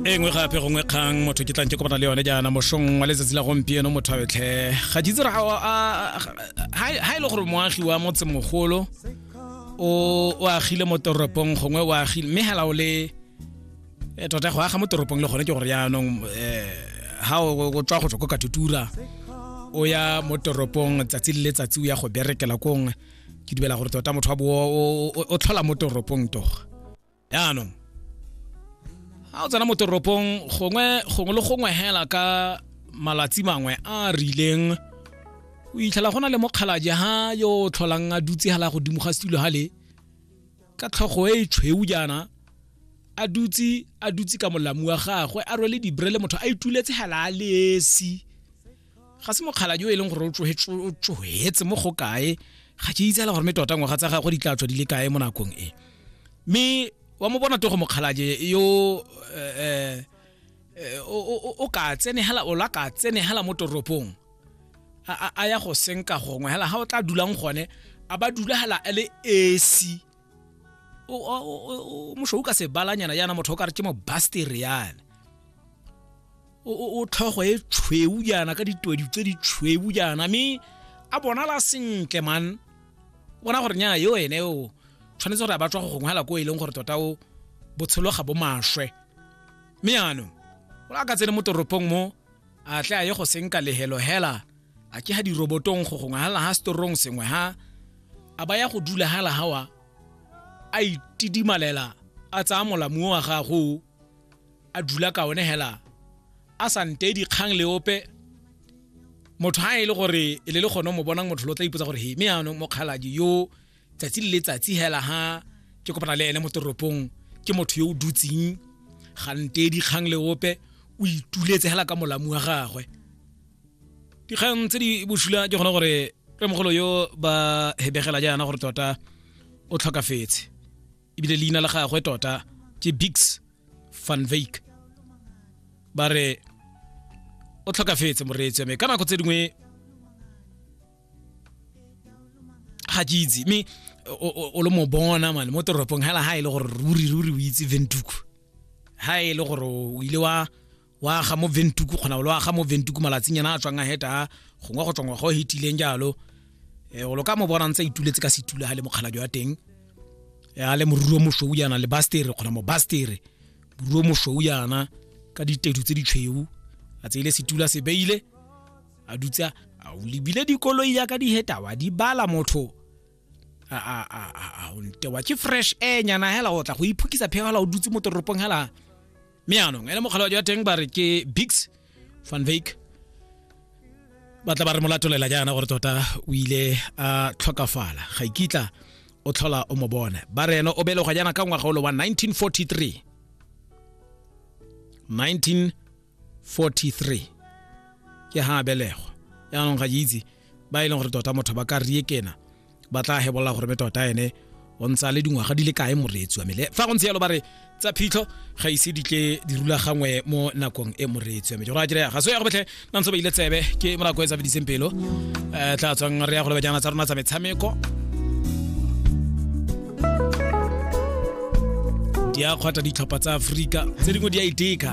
e nngwe gape gongwe kgang motho ke tlang ke kopana le yone jaana mosong wa letsatsi la gompieno motho a betlhe ga ke itse ga e le gore moagi wa motse mogolo o agile mo toropong gongwe o agile mme hela o le eh, tota go aga mo toropong le gone ke gore yaanong um ga o tswa go tswa ko katutura o ya mo toropong tsatsi le letsatsi o ya go berekela kongwe ke dibela gore tota motho wa bo o tlhola mo toropong toga yaanong ga o tsena mo toropong gongwe gongwe le gongwe hela ka malatsi mangwe a a rileng o itlhela go na le mokgalaje ha yo o tlholang a dutse hela godimo ga setulo hale ka tlhogo e e tshweu jaana a dutse a dutse ka molamu wa gagwe a rwele dibre le motho a ituletse hela a lesi ga se mokgaladi o e leng gore o tsohetse mo go kae ga ke itsela gore me tota ngwaga tsa gagwe di tla tswa di le kae mo nakong e mme wa mo bona togo mokgalaje yo um eh, eh, o ka tsenegela o la ka tsenegela mo toropong a ya go senka gongwe hela ga o tla dulang gone a ba dula hela a le esi mošo o ka se balanyana yana motho o ka re ke mo bastereane o tlhogo e tshweu jaana ka ditwedi tse di tshweu jaana mme a bonala sentle man bona gore nya yo ene o tshwanetse gore a batswa go gongwe ko e leng gore tota o botshelo ga bo maswe mme jaanong o a ka tsene mo toropong mo a tle a ye go senka lehelo hela a ke ha dirobotong go gongwe hala ha storong sengwe ha a ba ya go dula hala hawa a itidimalela a tsaya molamuo wa gago a dula ka one hela a sa nte dikgang le ope motho ha e le gore e le le gone mo bonang motho lo tla ipotsa gore he me yaanong mokgaladi yo tsatsi le letsatsi hela ha ke kopana le ene mo toropong ke motho yo o dutseng ga nte dikgang le ope o ituletse hela ka molamu wa gagwe dikgang tse di bosula ke gone gore re mogolo yo ba hebegela jaana gore tota o tlhokafetse ebile leina la gagwe tota ke bigs van vake ba re o tlhokafetse moreetsi mme ka nako tse dingwe ga ke itse mme o le mo bona mane mo toropong hela ha e le gore ruri ruri o itse ventuku ha e le gore o ile wa wa aga mo ventuku kgona o lo aga mo ventuku malatsing yana a tswang a heta gongwe go tswangwa go hetileng jalo eh, o lo ka mo bona ntse ituletse ka setula ga le mokgalajo wa teng eh, a le moruro mosweu yana le bastere kgona mo bastere moruro mosweu yana ka ditedu tse ditshweu a tseile setula se beile a dutsa a o lebile dikoloi yaka di heta wa di bala motho a a a a a o ntewa ke fresh air nyana hela o tla go iphukisa pheo hela o dutse mo toropong hela mme yaanong ene mokgalawajo wa teng ba re ke bigs van vake ba tla ba re molatolela jaana gore tota o ile a tlhokafala ga ikitla o tlhola o mo bone ba re ene o belegwa jaana ka ngwaga olo wa 1943 1943 ke ha a belegwa yaanong ga ke itse ba e leng gore tota motho ba ka riekena ba tla hebolola gore me tota ene o ntse a le dingwaga di le kae moreetsi wa mele fa go ntse yalo ba re tsa phitlho ga ise di tle di rulagangwe mo nakong e moreetsi wa mele jora kere ga so ya go betlhe na ntse ba ile tsebe ke morako e tsa bediseng pelo um tla tswang re ya go lebajana tsa rona tsa metshameko di a kgwata ditlhopha tsa aforika tse dingwe di a iteka